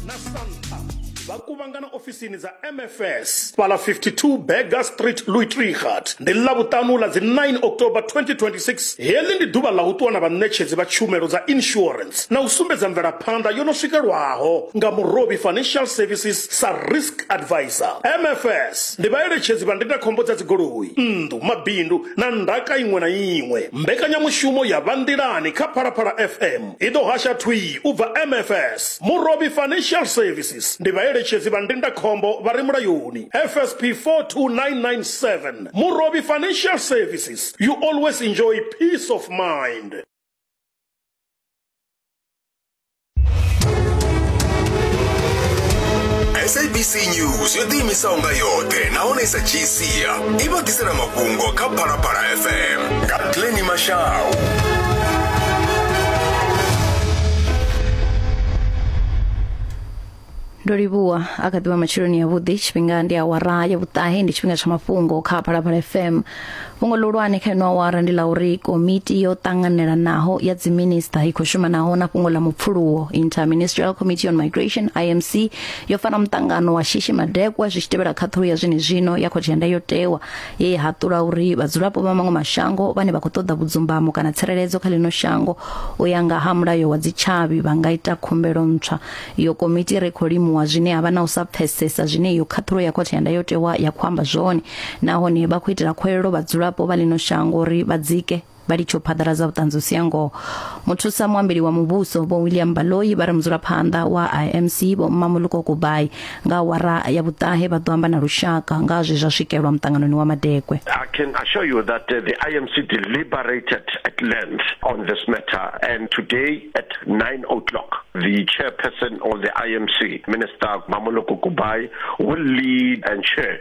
na santa vha kuvhangana ofisini dza mfs fhala 52 berger street louitrigat ndi ḽa vhuṱanu ḽa dzi 9 october 2026 heḽi ndi ḓuvha ḽa u ṱuwa na vhaṋetshedzi vha tshumelo dza insurance na u sumbedza mvelaphanḓa yo no swikelwaho nga murovhi financial services sa risk advisor mfs ndi vhaeletshedzi vha ndindakhombo dza dzigoloi nnḓu mabindu na ndaka iṅwe na iṅwe mbekanyamushumo ya vha nḓilani kha phalaphala fm I ḓo hasha thwii u bva MFS, Murovhi Financial Services, ndi vhaeletshedzi vha ndindakhombo vha re mulayoni, FSP 42997, Murovhi Financial Services, you always enjoy peace of mind. sabc news yo ḓiimisaho nga yoṱhe nahone i sa dzhisi sia i vha ḓisela mafhungo kha phalaphala fm nga pleni mashau ndo livhuwa a kha ḓivha matsheloni yavhuḓi tshifhinga ndi awara ya vhuṱahe ndi tshifhinga tsha mafhungo kha phalaphala fm fhungo ḽihulwane kha ino awara ndi ḽa uri komiti yo ṱanganelanaho ya dziminista i khou shuma naho na fhungo ḽa mupfuluwo interministerial committee on migration imc yo fara muṱangano wa shishi madekwa zwi tshi tevhela khaṱhulo ya zwenezwino ya khothe ya ndayotewa ye ya haṱula uri vhadzulapo vha maṅwe mashango vhane vha khou ṱoḓa vhudzumbamo kana tsireledzo kha ḽino shango u ya nga ha mulayo wa dzitshavhi vha nga ita khumbelo ntswa iyo komiti ri khou limuwa zwine ha vha na u sa pfesesa zwine iyo khaṱhulo ya khothe ya ndayotewa ya khou amba zwone nahone vha khou itela khuwelelo vhadzulapo vha ḽino shango uri vha dzike vha litsha u phaḓaladza vhuṱanzi u sia ngoho muthusa muambeli wa muvhuso vho william baloi vha ri mudzulaphanḓa wa imc vho mamuluko kubai nga wara ya vhuṱahe vha ḓo amba na lushaka nga zwe zwa swikelwa muṱanganoni wa madekwe I can assure you that uh, the IMC deliberated at length on this matter and today at 9 o'clock the chairperson of the IMC Minister Mamuluko Kubai will lead and chair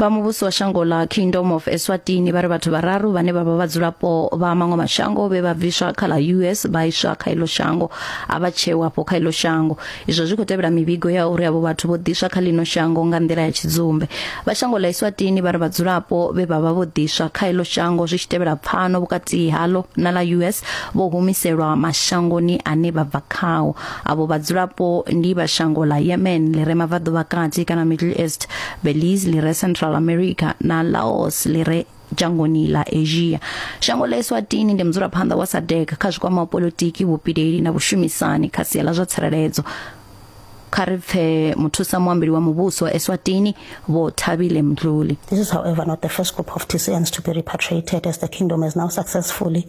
vha muvhuso wa shango ḽa kingdom of eswatini vha ri vhathu vhararu vhane vha vha vhadzulapo vha maṅwe mashango vhe vha bviswa kha ḽa us vha iswa kha iḽo shango a vha tsheu afho kha iḽo shango izwo zwi khou tevhela mivhigo ya uri avho vhathu vho ḓiswa kha ḽino shango nga nḓila ya tshidzumbe vha shango ḽa eswatini vha ri vhadzulapo vhe vha vha vho ḓiswa kha iḽo shango zwi tshi tevhela pfano vhukati haḽo na ḽa us vho humiselwa mashangoni ane vha bva khao avho vhadzulapo ndi vha shango ḽa yemen ḽi re mabvaḓuvha kati kana middle east belize li re central america na laos li re dzhangoni ḽa asia shango ḽa eswatini ndi mudzulaphanḓa wa sadec kha zwikwama wa politiki vhupileli na vhushumisani kha sia ḽa zwa tsireledzo kha ri pfe muthusa muambeli wa muvhuso wa eswatini vho thabile mdluli This is, however, not the first group of Tiseans to be repatriated as the kingdom has now successfully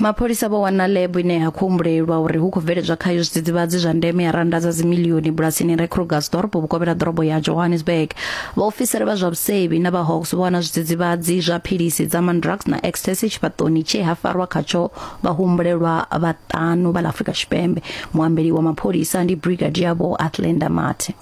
Mapholisa vho wana lab ine ya khou humbulelwa uri hu khou bveledzwa khayo zwidzidzivhadzi zwa ndeme ya randa dza dzimilioni bulasini re Krugersdorp vhukovhela ha ḓorobo ya Johannesburg. Vhaofisiri vha zwa vhusevhi na vha Hawks vho wana zwidzidzivhadzi zwa philisi dza Mandrax na ecstasy tshifhaṱoni tshe ha farwa khatsho vhahumbulelwa vhaṱanu vha ḽa Afrika Tshipembe. Muambeli wa mapholisa ndi Brigadier Vho Athlenda Mathe.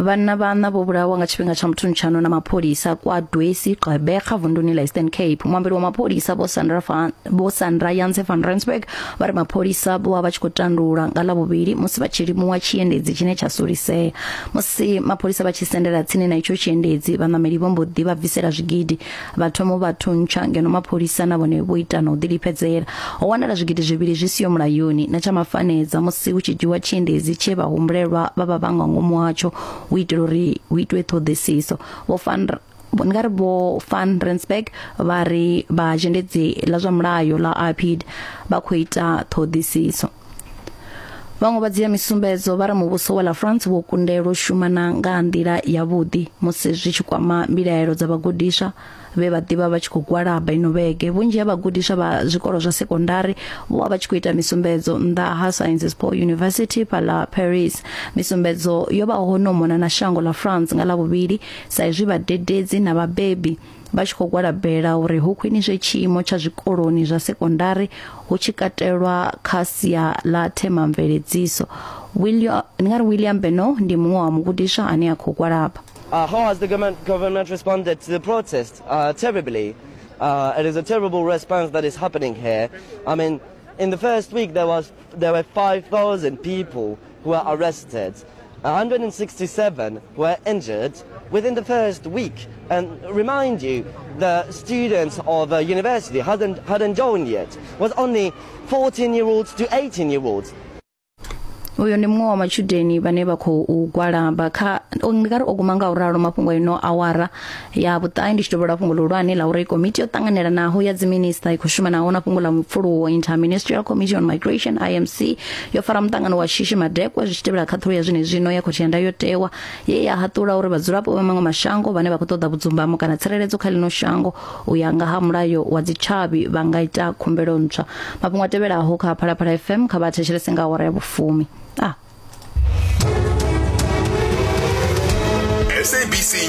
Vhanna vhaṋa vho vhulawa nga tshifhinga tsha muthunutshano na mapholisa kwa Dwesi Gqeberha vunduni la Eastern Cape. Muambeli wa mapholisa vho Sandra van vho Sandra Janse van Rensburg vha ri mapholisa vho vha vha tshi khou tandulula nga ḽavhuvhili musi vha tshi limuwa tshiendedzi tshine tsha sulisea. Musi mapholisa vha tshi sendela tsini na itsho tshiendedzi vhaṋameli vho mbo ḓi vha bvisela zwigidi vha thoma u vha thuntsha ngeno mapholisa na vhone vho ita na u ḓilifhedzela ho wanala zwigidi zwivhili zwi siho mulayoni na tsha mafanedza musi hu tshi dzhiwa tshiendedzi tshe vha humbulelwa vha vha vhanga ngomu hatsho u itela uri hu itwe ṱhoḓisiso vho fan nga ri vho fan Rensburg vha ri vha zhendedzi ḽa zwa mulayo ḽa IPID vha khou ita ṱhoḓisiso vhaṅwe vha dzhia misumbedzo vha ri muvhuso wa la france wo kundelwa u shumana nga ha nḓila yavhuḓi musi zwi tshi kwama mbilaelo dza vhagudiswa vhe vha ḓivha vha tshi khou gwalaba ino vhege vhunzhi ha vhagudiswa vha zwikolo zwa sekondari vho vha vha tshi khou ita misumbedzo nnḓa ha sciences po university phala paris misumbedzo yo vha ho no mona na shango la france nga lavhuvhili sa izwi vhadededzi na vhabebi vha tshi khou gwalabela uri hu khwiniswe tshiimo tsha zwikoloni zwa sekondari hu tshi katelwa kha sia ḽa themamveledziso william ndi nga ri william beno ndi muṅwe wa mugudiswa ane a khou gwalaba Uh, how has the government, government responded to the protest? Uh, terribly. Uh, it is a terrible response that is happening here. I mean, in the first week there was uyo ndi muṅwe wa matshudeni vhane vha khou gwalaba kha ndi nga ri o guma nga u ralo mafhungo a ino awara ya vhuṱahe ndi tshi dovha lwa fhungo luhulwane la uri komiti yo ṱanganelanaho ya dziminista i khou shumanaho na fhungo ḽa mupfuluwo interministerial committee on migration imc yo fara muṱangano wa shishi madekwa zwi tshi tevhela khaṱhulo ya zwine zwino ya khothe ya ndayotewa ye ya haṱula uri vhadzulapo vha maṅwe mashango vhane vha khou ṱoḓa vhudzumbamo kana tsireledzo kha ḽino shango u ya nga ha mulayo wa dzitshavhi vha nga ita khumbelo ntswa mafhungo a tevhelaho kha phalaphala fm kha vha thetshelese nga awara ya vhufumi ah. sabc